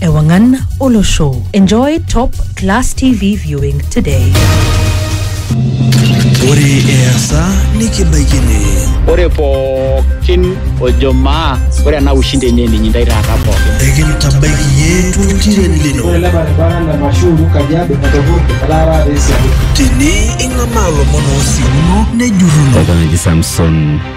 Ewangan Olosho. Enjoy top class TV viewing today. Ore easa nikibaikini. Ore pookin ojo maa ore ena ushindi enye ninyi ndai taata pookin. Ekintabaiki yie tultiren lino. Ore ele baribara le Mashuru Kajiado etopurte etaa taata esiadi. Tini ing'amaa lomon oosiuno nejurruno. Oltung'ani Samson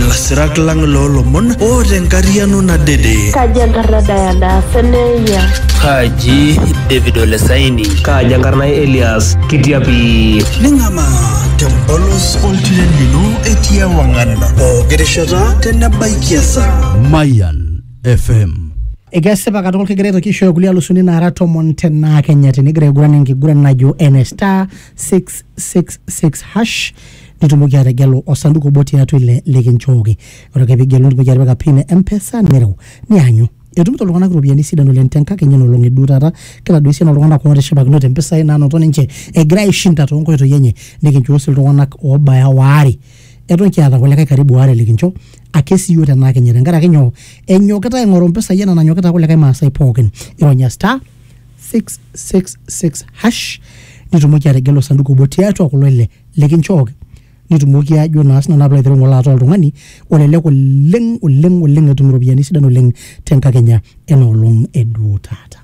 Lasirak lang loo lomon o te nkariano nadede. Kaji enkarna Diana Seneya? Kaji David Olesaini? Kaji enkarna Elias Kitiapi? Ning'amaa tempolos oltiren lino etii ewang'an pooki rishata tenebaiki esaa. Mayan FM. Ekesipa katukul kigira aitoki aishooyo kulie alusuni naara tomon tenaa Kenya tinigira aiguran enkiguran najo ene star 666 hash nitumoki ategelu osanduku obo tiatua ile likinchooki ore ake pigelu nitumoki atipika pin e mpesa nireu nianyu etumito iltung'anak iropiyiani sidan oleng tenkakenya enolong eduo taata kitaduo esiana oltung'anak ootishipakinote impisai naanoto ninche egira aishinda toonkoitoi enye nikinchoo sii iltung'anak oobaya waare eton kiata kulikae karibu waare likincho ake siiyioo tenaakenya tenkaraki nyoo enyokita aing'oru impisai enaa nanyokita kulikae maasai pookin ironya star 666 hash nitumoki ategelu osanduku obo tiatua kulo ile likinchooki nitumoki ajo naa sinanu apilo aiteru ng'ole ataa oltung'ani olelek oleng oleng oleng etum iropiyiani sidan oleng tenkakenya ena olong eduo taata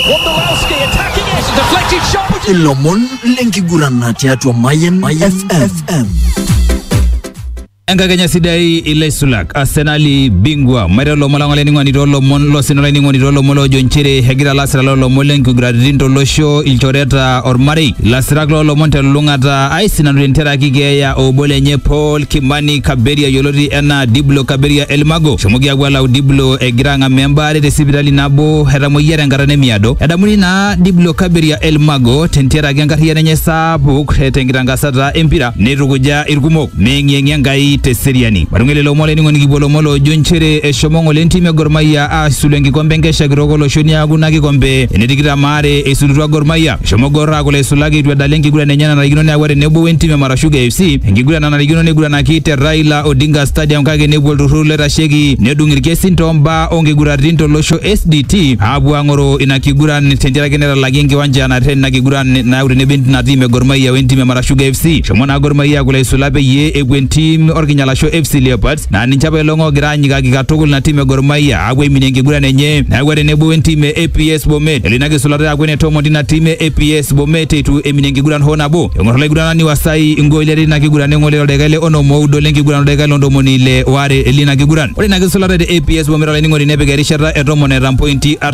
Wondolowski attacking it, deflected shot. ilomon lenkigurana tiatua Mayan FM. Enkakenya sidai ilaisulak Arsenali bingwa maita olomon lang olainining'oni toolomon losina olainining'oni toolomon loojo nchere egira lasira loolomon lenkiguraritin tolosho ilchoreta ormarei lasirak loolomon telulung'ata aisinanu tenteraki keeya obo lenye Paul Kimani Kaberia yioloti enaa Diblo Kaberia Elmago eshomoki aapuo alau Diblo egira ang'amaa embaare te sipitali nabo etamoyia tenkata nemiado edamuni naa Diblo Kaberia Elmago tenteraki enkarriyiano enye saapuk tenkitangasata empira neitukuja irkumok neyeng'iyeng'ia Enkai te seriani. Matunge lelo omon olainining'oni kipuo lomon loojo nchere eshomo ng'ole entim e Gor Mahia aasulu enkikombe enkesha kitok olosho niaku ina kikombe ene tikitam aare eisulutua Gor Mahia. Eshomo Gor aaku laisulak eitu edala enkiguran enye nanarikino neyawua tenebo wentim e Mara Sugar FC enkiguran nanarikino neiguranaki te Raila Odinga Stadium kake nepuo olturrur loitasheki nedung ilkesin too mbaa oo nkiguratin to losho SDT aapuo aang'oroo ina kiguran tentiaraki netalaki enkiwanja naterren ina kiguran nayau tenebo ina tim e Gor Mahia wentim e Mara Sugar FC. Shomo naa Gor Mahia kule aisula peyie epuo entim orkinyalasho FC Leopards naa ninche apa ilong oogira aanyikaki katukul ina tim e Gor Mahia aapuo aiminie enkiguran enye neeku tenebo entim e APS Bomet elo ina kisulata aaku ene tomon tina tim e APS Bomet eitu eminie enkiguran hoo nabo. Eng'or olaiguranani Wasai ingooli are tina kiguran neng'ole toldaika le onom oudo lenkiguran oldaika le ntomoni ile waare lina kiguran. Ore ina kisulata te APS Bomet olainining'oni nepik erishata e tomon eeta mpointi artam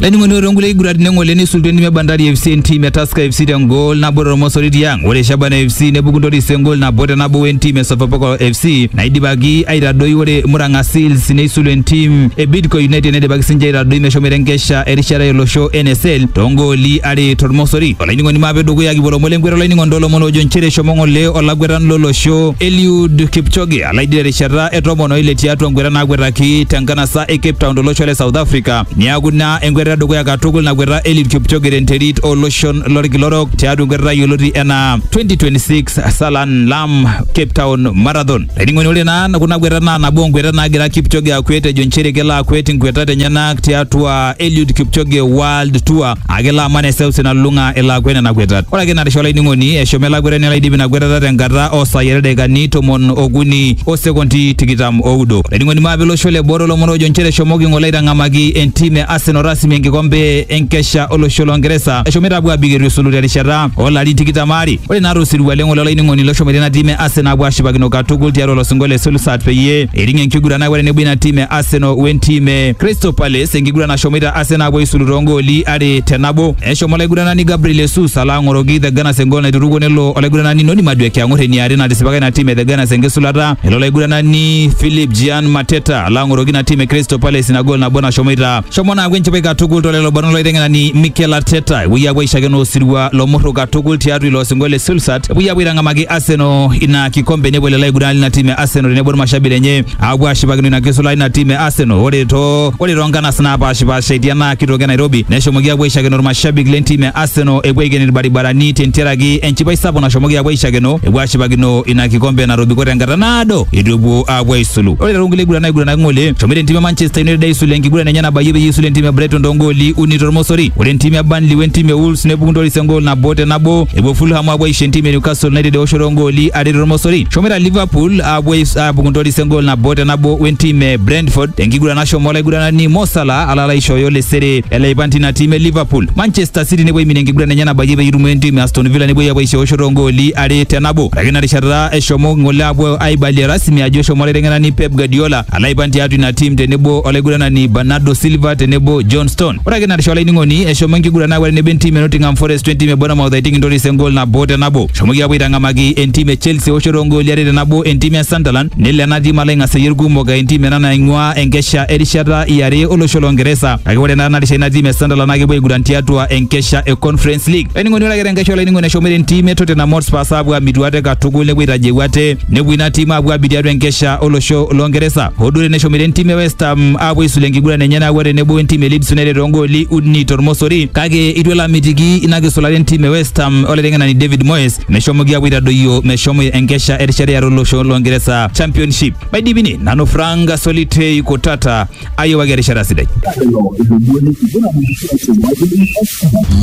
Laining'oni ore toonkulie kiguraritin eng'ole neisultua entim e Bandari FC entim e Tusker FC tengol nabo tormosori tiang. Ore Shabana FC nepuku Ntoris engol nabo te nabo wentim e Sofapaka FC naidipaki aitadoi ore Murang'a Seals neisulu entim e Bidco United neidipaki sinche aitadoi meshomoita enkesha erishata olosho NSL toongooli are tormosori. Olainining'oni maape dukuya kipuo lomon lenkweta olainining'oni toolomon oojo nchere eshomo ng'ole olakwetani lolosho Eliud Kipchoge alaidi terishata e tomon oile tiatua nkweta naakwetaki tenkanasa e Cape Town tolosho le South Africa Niaku ina enkweta edukuya katukul nakweta Eliud Kipchoge tenterit oloshon lorkila orok tiatua enkwetata yioloti enaa 2026 Salan Lam Cape Town Marathon. Laining'oni ore naa kuna kwetat naa nabo onkwetat naagira Kipchoge akwet ejo nchere kelo akwet inkwetat enyenak tiatua Eliud Kipchoge World Tour ake ilo aman eseuseu nalulung'a elo akwe nena kwetat. Ore ake ina risha olainining'oni, eshomo ele akwetani alo aidip ina kwetata tenkata oo saai are ildaikani tomon okuni o sekondi tikitam oudo. Olainining'oni maape olosho le boo toolomon oojo nchere eshomoki ng'ole aitang'amaki entim e Arsenal rasmi enkikombe enkesha olosho loo Ngeresa eshomoita apuo aabik eitu esulu terishata oo larin tikitam aare. Ore naa to sirua le ng'ole olainining'oni loshomoita ina tim e Arsenal aapuo aashipakino katukul tiatua ilo sinkolio le Solskjaer peyie eiting enkiguran akwet tenebo ina tim e Arsenal wentim e Crystal Palace enkiguran nashomoita Arsenal apuo aisulu too gooli are te nabo. Eshomo olaiguranani Gabriel Jesus alo ang'oroki The Gunners engool naiturukuo nelo olaiguranani Noni Madueke ang'or eniare natisipaka ina tim e The Gunners enkisulata. Elo olaiguranani Philip Gian Mateta alo ang'oroki ina tim e Crystal Palace ina gool nabo nashomoita. Shomo naaku enchipai katukul to lelo barnot loiteng'enani Mikel Arteta. Epuoi apuo aishakeno osirua lomurru katukul tiatua ilo osingo le Silsat. Epuoi apuo aitang'amaki Arsenal ina kikombe nepuo lelo aiguranani lina tim e Arsenal tenebo irmashabik lenye apuo ashipakino ina kisulai ina tim e Arsenal. Ore too ore too nkanas naapashipasha etii ena kitoki e Nairobi neshomoki apuo aishakeno irmashabik le ntim e Arsenal epuo aiken irbaribarani tentiaraki enchipai sapuk nashomoki apuo aishakeno epuo ashipakino ina kikombe natobiko tenkata naado eitu epuo apuo aisulu. Ore too nkulie kiguran naiguranaki ng'ole eshomoita entim e Manchester United aisulu enkiguran enye nabayie peyie eisul entim e Brighton too ngooli uni tormosori. Ore entim e Burnley we ntim e Wolves nepuku ntoris engool nabo te nabo epuo Fulham apuo aisho entim e Newcastle United eoshoto oo ngooli are tormosori. Eshomoita Liverpool apuo aibung intoris engol nabo te nabo wentim e Brentford tenkiguran nashomo olaiguranani Mo Salah ala aishooyo lesere ele aipan tina tim e Liverpool. Manchester City nepuo aiminie enkiguran enye nabayie peyie eitumo entim e Aston Villa nepuoi apuo aishoosho toongooli are te nabo. Ore ake ina rishata eshomo ng'ole apuo aibalie rasmi ajo eshomo olaiteng'enani Pep Guardiola ala aipan tiatua ina tim tenebo olaiguranani Bernardo Silva tenebo John Stone. Ore ake narisha olainining'oni eshomo enkiguran aaku tenebo entim e Nottingham Forest we ntim e Bournemouth aiting intoris engol nabo te nabo. Eshomoki aapuo aitang'amaki entim e Chelsea eoshoto oongooli are te nabo entim e Sunderland nelo ena tim alo aing'aseyie ilkumok aa entim ena naing'ua enkesha erishata e are olosho loo Ngeresa kake ore naa narisha ina tim e Sunderland naa kepuo aiguran tiatua enkesha e Conference League. Olainining'oni ore ake tenkesha olainining'oni eshomoita entim e Tottenham Hotspurs aapuo aamitu ate katukul nepuo aitaji ewuate nepuo ina tim aapuo abik tiatua enkesha olosho loo Ngeresa hoo duo teneshomoita entim e West Ham aapuo aisula enkiguran enye nayawua tenebo entim e Leeds United toongooli uni tormosori kake itu elo amitiki ina kisulata entim e West Ham olaiteng'enani David Moyes meshomoki aapuo aitadoyio meshomo enkesha erishata eare olosho loo Ngeresa Championship maidipini nanu Frank Solitei Kutata ayiwaki erishata sidai.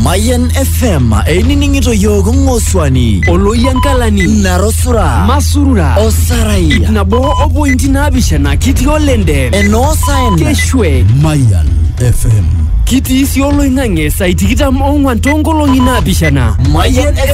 Mayan FM einining'ito yiook ng'osuani oloyiankalani narosura masurura osarai ip nabo opointi naapishana kitii olende enoosaen keshwe Mayan FM. kitii sii oloing'ang'e saai tikitam ong'wan toonkolong'i naapishana Mayan